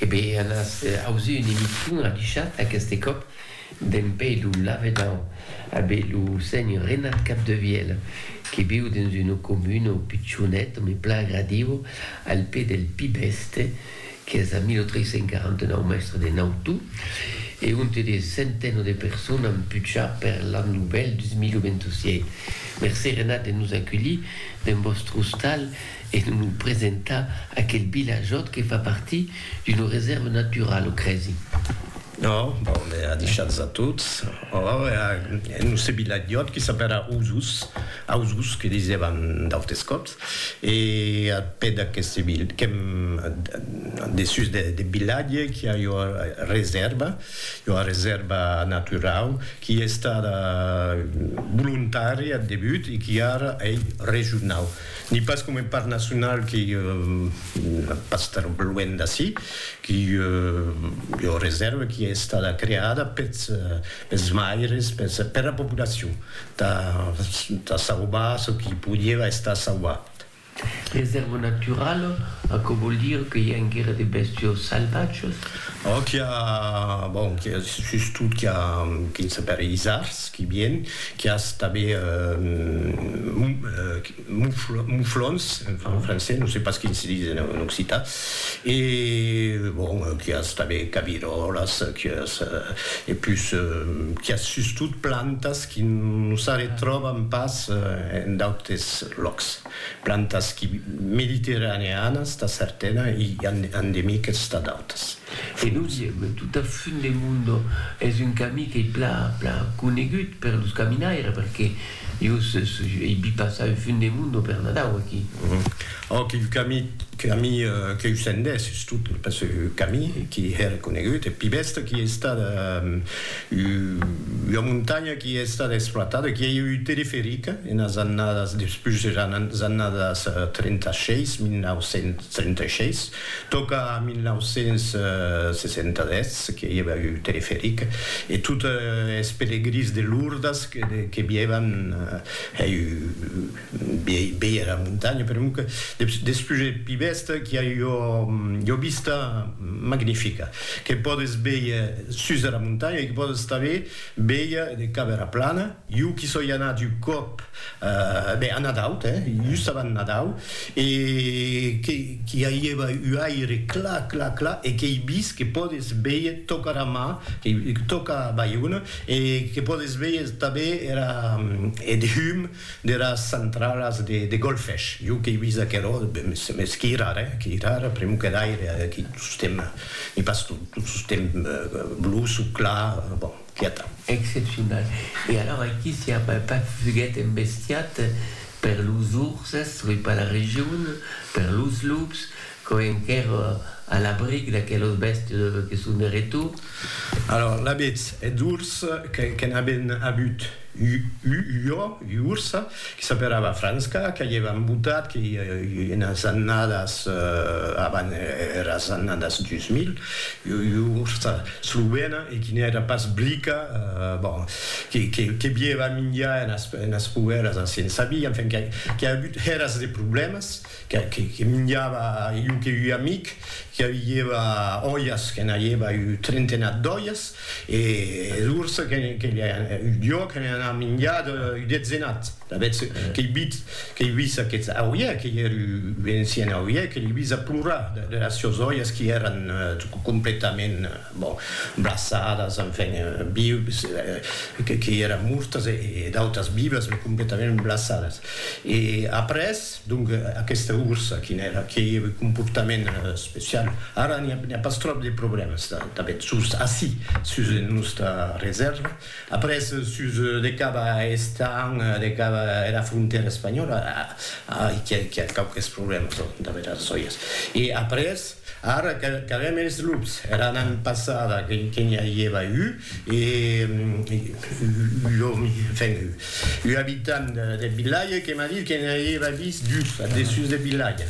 E be an as ausir un emission a dichat aqueste còp d'en pei lo lavedan a be lo seny Renat Capdevièl que viu dens una comuna o pichonet me pla agradiu al pè del Pibèste qu'es a 1349 mèstre de Nautu e onte de centeno de persona an pucha per l'an novèl 2027. Mercé Renat de nos aculhir dens vòstre ostal e non lo presentar a aquel vilajòt que fa partir d'una resèrva naturala, o cresi? No, bon, e a deishar-los a tots. Ora, en lo se vilajòt que s'apèra Osos, Ausos que disèvan d'autes còps, e a pè d'aqueste vi, qu'èm dessús deth vilatge, qu'i a ua resèrva, ua resèrva naturau, qu'i estada volontària ath debut e qu'i ara ei regionau. Ni pas coma un parc nacional qui pas tan luènh d'ací, qui ei ua reserva qui ei estada creada pels maires, per la populacion, tà sauvar çò qui podieva estar sauvat. Reserva naturala, aquò vòl dire que i a enguera de bèstias salvatjas? Ò qu'i a, bon, qu'i a sustot qu'i a quin s'apèri isards, qu'i vien, qu'i as tanben mouflons, en francés, non sé pas quin se dis en occitan, e, bon, qu'i as tanben caviròlas, qu'i as, e pus, qu'i as sustot plantas qu'i nos arretròbam pas en d'autes lòcs. Plantas qui mediterraneanas tà certana e endemiques tà d'autas. E dosièm, tot a fund de mundo es un camí qu'ei pla pla conegut per los caminaires perque jos ei vi passar un fund de mundo per Nadau aquí. Òc, un camí camí qu'eu sendès sustot pas un camí qui hè reconegut, eth pi bèsta qui ei estat Ua montanha qui ei estada exploitada, qui ei eu teleferica enas annadas despús eras annadas 36, 1936, tòca a 1967 que i eva eu teleferica e tot es pelegrins de Lourdes que vievan eu Bèia era montanha, per un que des pujets pi bèsta qu'i a ua vista magnifica que pòdes bèir sus era montanha e que pòdes tanben bèir cap era plana. Jo qu'i soi anat un còp, ben a Nadau, hè, just avant Nadau, e qu'i aieva un aire clar, clar, clar e qu'ei vist que pòdes bèir tòca era mar, tòca Baiona e que pòdes bèir tanben era, eth hum, deras centralas de golfesh. Jo qu'ei vist aquerò, mès qui rara, eh? Qui rara, pr'emu que d'aire, qui tostemp, e pas tot, tot tostemp bluç o clar, bon, qui atau. Excepcional. E alors aquí si a pas fuguet embestiat per los urses, oi, per la region, per los lups, Quò enquèr a l'abric d'aquelos bèstes que son de retor. Alòr, l'abetz eth urs que n'aben avut ua ua ursa que s'aperava Franska, que aievan embotat que i enas annadas avan eras annadas 2000, ua ursa slovena e qui n'èra pas blica, bon, que bieva minjar enas poèras a Sensabí, enfin, qu'a avut eras de problèmas. que minjava iu que ui amic que aviieva oias que n'aieva iu trentenat d'oias e d'urs que jo que ne n'av minjat iu detzenat avètz que i bit que i vis aqueth auie que i er iu encien auie que li vis a plorar de las sios oias qui eran completament bon braçadas enfin vius que i eran mortas e d'autas vivas me completament braçadas e après Donc aquesta ursa quin èra? Qué comportament especial? Ara n'i a pas tròp de problèmas tanben sus ací, sus nosta resèrva. Après sus de cap a Estañ, de cap era frontèra espanhòla, a qu'i a quauques problèmas, tanben aras òias. E après, Ara qu'avèm es lups. Era nan passada que n'i avieva u, e l'òmi, enfin, u abitant deth vilatge que m'a dit que n'i avieva vist dus ath dessús deth vilatge.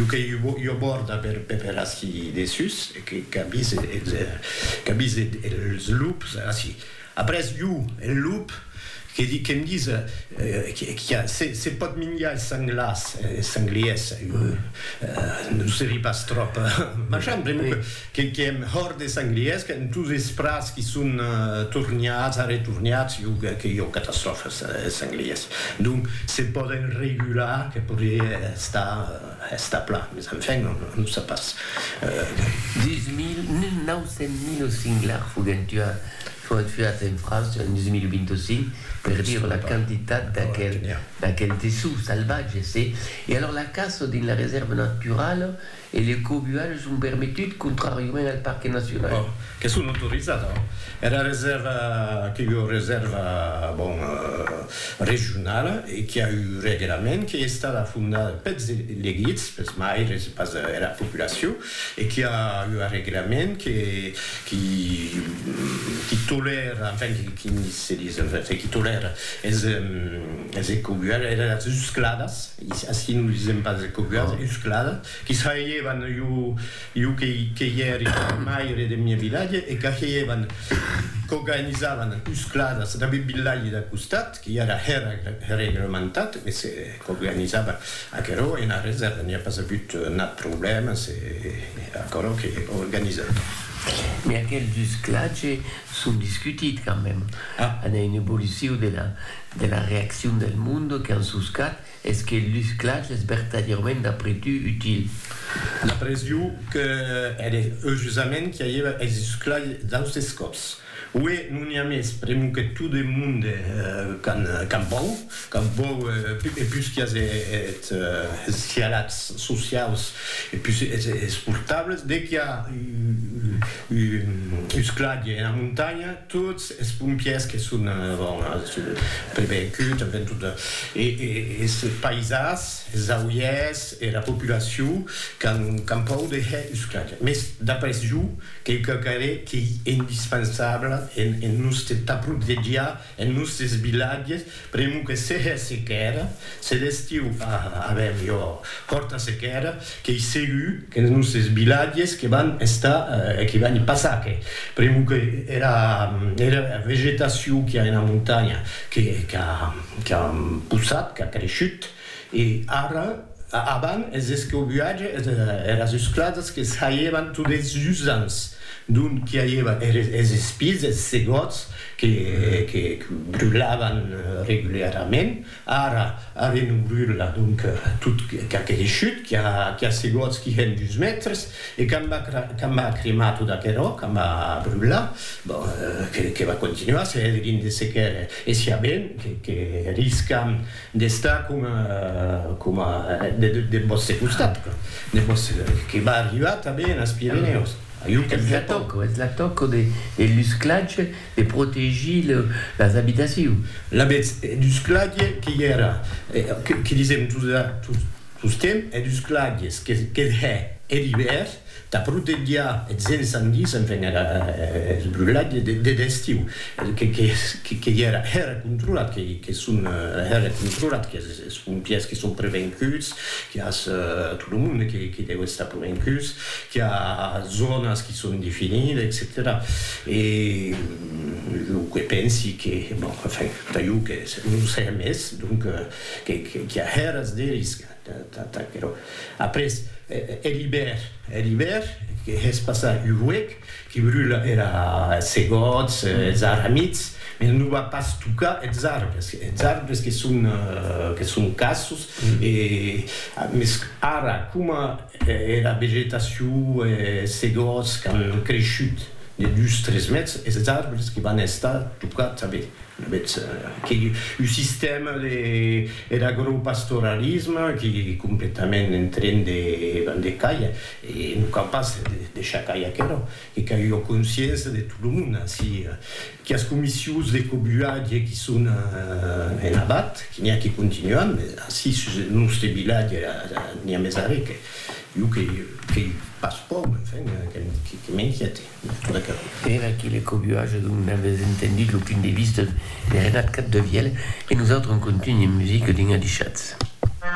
U que ua bòrda per ací dessús, qu'a vist es lups ací. Après jo, en lop, que di que'm dis qu'a se pòt minjar es sanglars, es sangliers, jo non serí pas tròp machan, pr'amor que que èm hòrt des sangliers, qu'èn tots es prats qui son torniats, arretorniats, jo que jo catastròfa es sangliers. Donc se pòden regular, que podrié estar. Esta pla, mes enfin, on o sap pas. Deus mil neuf cents mil o singlar foguèt tua, foguèt tuat en França en deus mil vint o cinc, per dire la quantitat d'aquel, d'aquel tessut salvatge, se. E alors la caça dins la resèrva naturala e le cobuatge son permetut contràriament al parque nacional. Oh, que son autorizada. Era resèrva, que ua resèrva, bon. regionala e qui a eu reguerament, qui es estada fondada peths elegits, peths maires e pas era populacion e qui a eu arreguerament que qui qui tolèra, enfin qui se dis, enfin qui tolèra es es ecobuadas, era es uscladas, ací non disèm pas ecobuadas, uscladas, qui s'aievan jo Iu que i èri maire deth miei vilatge e qu'ageievan, qu'organizavan uscladas dab eth vilatge dau costat, que i èra reglementat, e se qu'organizava aquerò ena reserva, n'i a pas avut nat problèma, se aquerò que organizava. Mès aqueles usclatges son discutits quand mème. An a un evoluciu de la reaccion del monde qu'an suscat. Es que lus clachs es vertadièrament d'après tu util? D'après iu, que ère eujusament qui aiever es lus clachs d'austes còps. Ué, non n'i a mès, pr'emu que tot eth monde qu'an vòu, qu'an vòu e pus qui as es cialats sociaus e pus es portables, de qui a lus clachs ena montanha, Tots es pompièrs que son prevenguts, tanben tot es paisans, es auièrs, era populacion qu'an pòur de hèr usclatge. Mès d'après jo, qu'ei quauquarre qu'ei indispensable en nòste ta protegiar es nòstes vilatges, Primo que sehe sequèra, se l'estiu fa avèm jo fòrta sequèra, qu'ei segur qu'enes nusses vilatges que van estar, que van i passar que, primo que era era vegetacion qu'i a ena montanha que qu'a qu'a possat, qu'a creishut, E ara, avant es escobuatge es eras uscladas que saievan tot es usants, dont qu'i aieva es espilhs, es segòts que que brulavan regularament, ara arren non brula, donc tot qu'a creishut, qu'i a qu'i a segòts qui hèn dus mètres, e quand va quand va cremar tot aquerò, quand va brular, bon, que que va continuar se hèdrien de sequer, e siá ben que que riscam D'estar coma, coma, deth vòste costat, deth vòste, que va arribar tanben enes Pirenèus, jo qu'èm ja tòc. Es la tòca de l'usclatge de protegir las abitacions. Lavetz, d'usclatge que i èra, que disèm, Susquem eth usclagues qu'eth hè, er ivèrn, tà protegiar eths encendis, enfin era eth brulhatge deth estiu, que i era hèra controlat, que son hèra controlat, que es pompièrs que son prevencuts, que i as tot lo monde que deu estar provencuts, que i a zònas que son definides, etcetèra. E jo que pensi que, bon, enfin, tà jo que non se hè mès, donc, Qu'i a hèras de risca, t'aquerò. Après, hè l'ibèr, hè l'ibèr, que hè's passar un huec, qu'i brula era segòts, es arramits, mès non va pas tocar es arbres, es arbres que son, que son cassos, e, mès ara, coma era vegetacion, es segòts qu'an creishut de dus, tres mètres, es arbres que van estar tocats tanben. Betz que un sistèma der agropastoralisme qui completament en tren de bander caia, e non cau pas deishar cair aquerò, que cau ua consciença de tot lo monde ací, quias comissions de cobuatge qui son en abat, qui n'i a qui continuan, mès ací sus eth nòste vilatge n'i a mès arré que iu que i passo pauc, enfin, que m'inquiète. Per aquele cò viu aja donc n'avètz entendut lo punt de vista de Renat Capdevièlh e nosautres en contunhem musica dins Adichatz.